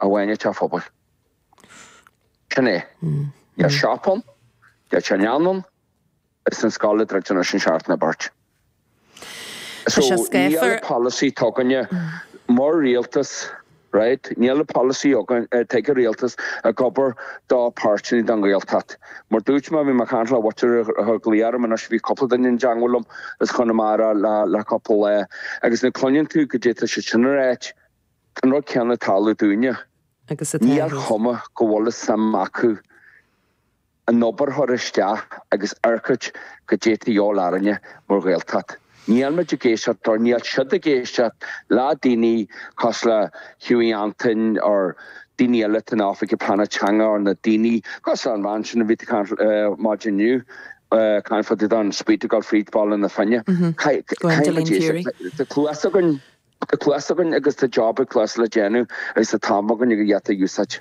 a bhaineann le phobail. Sin é. Deir sé Stop ann, deir sé Lean ann, is an scoil a druideann leis an seartan a beirt. Tá So, sé níl an scaothfar. polasaí atá againn mar rialtas, right? Níl an polasaí againn, eh, ag an rialtas ag obair dá páirtí nó don nGaeltacht. Mar dúirt mé, bhí mé ag caint le Witcher ar ar an gclaí orm anois, bhí cúpla duine i dteangmháil liom as Chonamara le le cúpla lá, agus nuair a cluineann tú goidé atá siad sin ag ráit, Tá an rud céanna ag tarlú dúinne. Agus atá Níl ag. cuma go bhfuil a suim acu an obair a chur isteach agus amharc ar goidé atá a dhíobháil orainne mar Ghaeltacht. Níl muid ag éisteacht dóibh, níl siad ag éisteacht le daoine cosúil le Hughie Antain or daoine eile atá in Oifig Pleanála Teanga or na daoine cosúil leis an bhean sin a bhí maidin inniu, Conn Fodadán, Speed to Golf Reach, Ball an Fhine. Gwendoline Furey. Tá cluas againn. Tá cluas againn agus tá job ag cluas le déanamh agus tá an t-am againn iad a úsáid.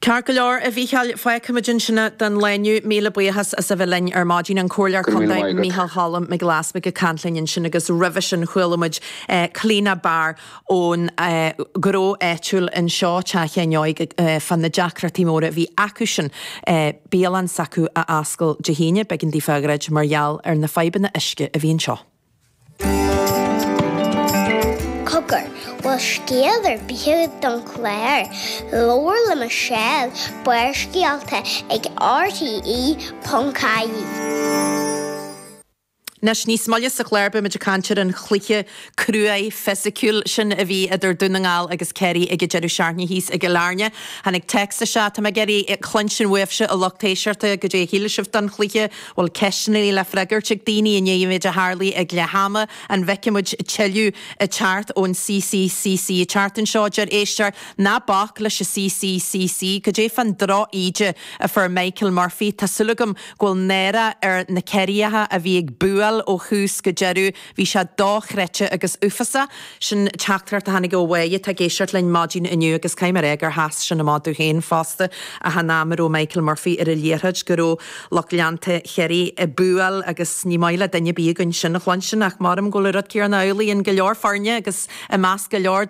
Ceart go leor, a Mhícheáil. Fágfaimid ansin don lá inniu. Míle buíochas as a bheith linn ar maidin. An Comhairleoir Go raibh míle Contae maith agat. Mícheál Cholm Mac Giolla Easbuig ag caint linn ansin agus roimhe sin chuala muid Clíodhna Barr ón ngnó áitiúil anseo, Teach Sheáin Óig, fá na deacrachtaí móra a bhí acusan bialann s'acu a oscailt Dé hAoine. B'éigean daofa í a dhruid mar gheall ar na fadhbanna uisce a bhí anseo. Cogar, bhfuil scéal ar bith don chlár? Labhair le Michelle, Barrscéalta ag RTE.ie. Anois, níos moille sa chlár beimid ag caint ar an chluiche cruaidh, fisiciúil sin a bhí idir Dún na nGall agus Ciarraí ag an deireadh seachtaine thíos i gCill Airne. Tháinig téacs isteach, Tá mé ag iarraidh cluinstin uaibhse a lucht éisteachta, goidé a shíl sibh don chluiche? bhfuil ceisteanna le freagairt ag daoine i ndiaidh an méid a tharlaigh ag leath ama, an bhfeicfidh muid tuilleadh ag teacht ón CCCC? Ag teacht anseo a deir éisteoir, ná bac leis an CCCC. Goidé fán drochíde a fuair Michael Murphy? Tá súil agam go bhfuil náire ar na Ciarraíocha a bhí ag búáil ó thús go deireadh. Bhí sé dochreidte agus uafásach. Sin teachtaireacht a tháinig ó bháille atá ag éisteacht linn maidin inniu agus caithfidh mé a rá gur sheas sin amach domh féin fosta achan am a raibh Michael Murphy ar an liathróid go raibh lucht leanta Chiarraí ag búáil agus ní maith le duine ar bith againn sin a chluinstin ach maram go bhfuil rud céarna amhlaidh in go leor foirne agus i measc go leor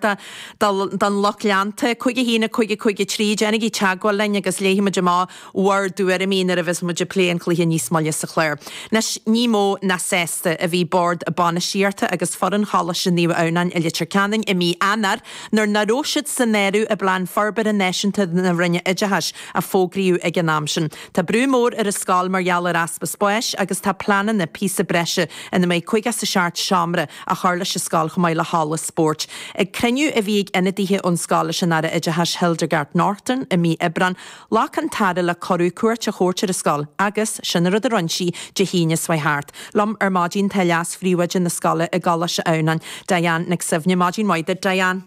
don lucht leanta. Cúig, a hAon, a Cúig, a Cúig, a Trí, déanaigí teagmháil linn agus léifidh muid amach bhur dtuairimí nuair a bheas muid ag plé an chluiche níos moille sa chlár. Anois, ní mó ná sásta a bhí Bord Bainistíochta agus foireann Choláiste Naomh Adhamhnáin i Leitir Ceanainn i mí Eanáir nuair ná raibh siad san áireamh i bPlean Forbartha Náisiúnta na Roinne Oideachais a fógraíodh ag an am sin. Tá brú mór ar an scoil mar gheall ar easpa spáis agus tá pleananna píosa breise ina mbeidh cúig is seacht seomra á chur leis an scoil chomh maith le halla spóirt. Ag cruinniú a bhí ag ionadaithe ón scoil leis an Aire Oideachais Hildegarde Naughton i mí Aibreán, Ghlac an tAire le cuireadh cuairt a thabhairt ar an scoil agus, sin an rud a rinne sí, Dé hAoine seo thart. liom ar maidin tá leas phríomhoide na scoile i gColáiste Adhamhnáin, Diane Nic Suibhne. Maidin mhaith duit, Diane.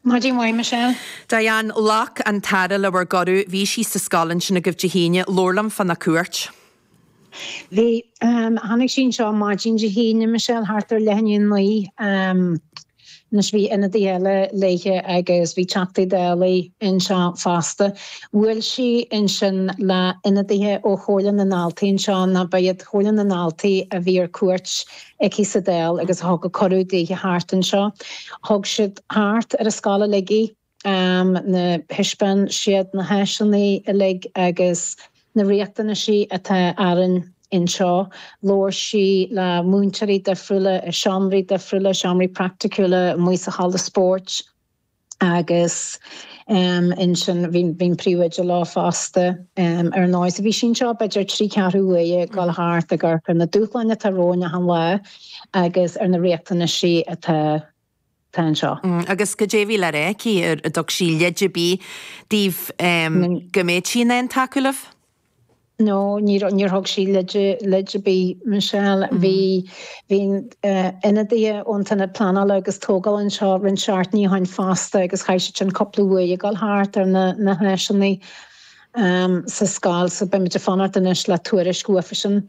Maidin mhaith, Michelle. Diane, Ghlac an tAire le bhur gcuireadh. Bhí sí sa scoil ansin agaibh Dé hAoine. Labhair liom fána cuairt. Bhí. Tháinig sí anseo maidin Dé hAoine, Michelle, thart ar leath i ndiaidh a naoi. Anois, bhí ionadaithe eile léithe agus bhí Teachtaí Dála anseo fosta. Bhuail sí ansin le ionadaithe ó Chomhairle na nDaltaí anseo, nó ba iad Comhairle na nDaltaí a bhí ar cuairt aici sa Dáil agus a thug an cuireadh daoithe thart anseo. Thug siad thart ar an scoil uilig í. thaispeáin siad na háiseanna uilig agus na riachtanaisí atá orainn anseo. Labhair sí le múinteoirí difriúla i seomraí difriúla, seomraí praiticiúla amuigh sa halla spóirt agus ansin bhí an príomhoide leo fosta ar ndóigh. So bhí sí anseo b'fhéidir trí ceathrú uaire ag dul thart ag amharc ar na dúshláin atá romhainn achan lá agus ar na riachtanaisí atá Tá anseo. Agus goidé a bhí le rá aici, an dtug sí leid ar bith daoibh go mbeadh sí in ann tacú libh? No, níor thug sí leid ar bith, Michelle. Bhí, bhí ionadaithe ón Aonad Pleanála agus Tógála anseo roinnt seachtainí ó shin fosta agus chaith siad sin cúpla uair ag dul thart ar na háiseanna sa scoil so beimid ag fanacht anois le tuairisc uafa sin.